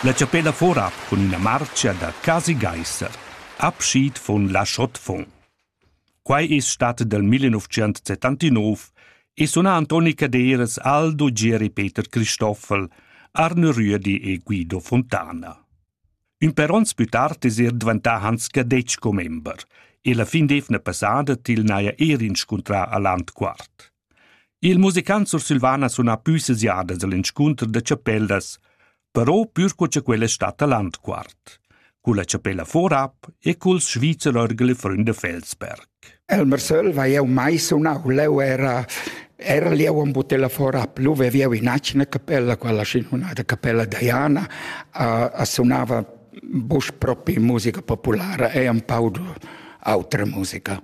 La chapella for ab cun üna marcha da Casi Geiser, abschied von La Chaux-de-Fonds. Quai es stat dal 1979 e suna Antoni Caderas, Aldo, Gieri Peter Cristoffel, Arne Rüedi e Guido Fontana. Ün per ons pü tard es er dvantà Hans Cadetsch commember e la fin d'eivna passada til n'haja eir inscuntrà a Landquart. Il musicant sursilvan ha sunà pü ses jadas al inscunter da chapellas, però pür co cha quella è stata landquart. Culla chapella Vorab e culs Schweizer Orgel e Freunde Felsberg. Elmer Söll va eu mai sunau, leu era era lì un butella fora plus vivia in acina capella, quella sinfonata capella Diana, uh, suonava bus propi musica popolare e un po' autra musica.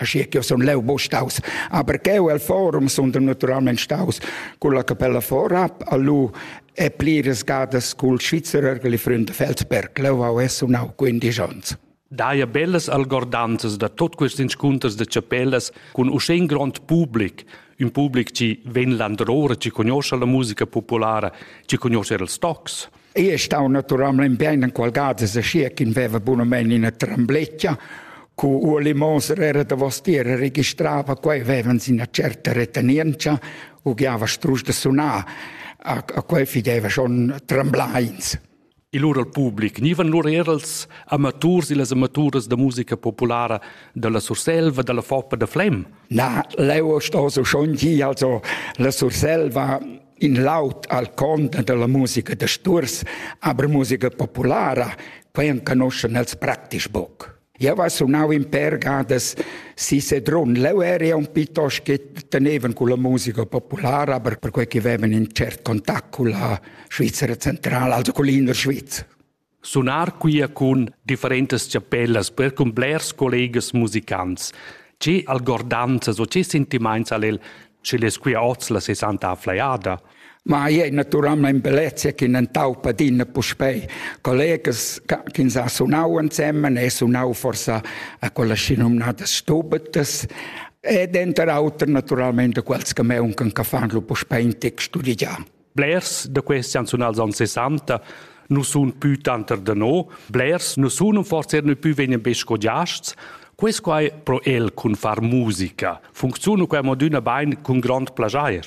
Aschi che sun leu buca staus, aber cheu el forum sun naturalmein staus con la capella vorab a lu e pliras gadas cul Schweizerer che li Freund Feldberg. Leu ha es sunau 15 ons. Daia bellas algordanzas da tot quest inscunters de chapellas cun uschè in grond public, un public ci ven landrore, ci conosce la musica populara, ci conosce il stocs. Ei ei stau naturalmein bein enqual gada aschia ch'in veva bunamein ina trembletga. Cu Ueli Moser era davostier e registrava quei, vevans ina certa retenientscha, ugliava strusch da sunar. A, a quei fideva schon tremblains. Il lur al public gnivan lur er als amaturs e las amaturas da musica populara dalla Surselva, dalla Foppa da Flem. Na, leu sto so schon gi, also la Surselva in laud al conta dalla musica da sturs, aber musica populara, quei enconoschen els praktisch boc. Eu va sunau in per gadas si Sedrun. Leu eri un piuttosto che tenevan con la musica populara, aber per quei che avevan in cert contact con la Svizzera centrale, also con l'inner Sviz. Sunar quia cun differentas chapellas per cun blers collegas musicants. Che algordanzas o che sentimaints ha'l el, schi'l es quia hoz la sesanta flajada? Ma ei ei naturalmein bellezia chi n'han taupa adina puspei. Collegas chi s'ha sunau ensemen e sunau forsa a quella schinomnada stubetas e denter auter naturalmein da quels che meuncan che fan lu puspei in tec studiar. Blers da questi anzonal anni 60 non sono più tanto da no, blers non sono forse non più vengono ben scogiasts, Quest qua è pro el cun far musica. Funziona qua moduna bain cun grond plagier.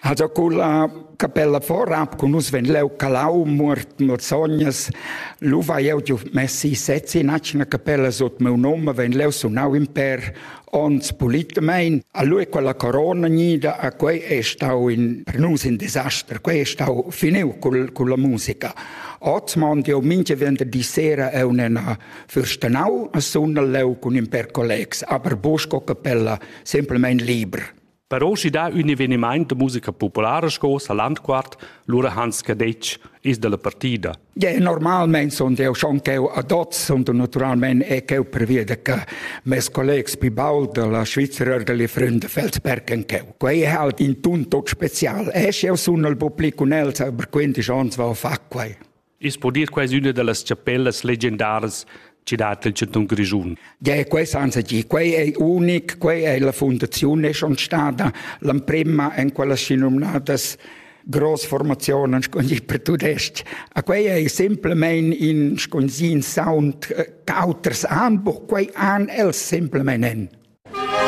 Also quella capella vorab con us ven leu calau mort morzognas luva eu giu messi sezzi in acina capella sut meu nome ven leu sunau in per Ons politamain a lui quella corona gnida a quei è stau in per nus in disaster, quei è stau finiu col, con la musica. Oz mond io minche vender di sera è un'ena fürstenau a sunna leu cun in per collegs, aber busco capella semplicemente liber. Per oschi dà ün evenimaint da musica populara sco sa Landquart, lura Hans Cadetsch is dalla partida. Yeah, normalmein sunt eu schon ch'eu ad hoz sunt naturalmein e ch'eu preveda che mes collegs più baul dalla Svizra oder le Freunde Feldsbergen ch'eu. Quei è halt in tun tot special. E sch'eu sun al public cun els, aber quindisch ans val far quei. I's po dir quai üna da las chapellas legendaras chi dat il chantun Grischun. Ja, quai senza chi, quai è unic, quai è la fundaziun è schon stata l'emprima in quella si nominatas grossformationen per tudest. A quei è simplement in sconzin sound eh, auters anbuch, quei an els simplement en.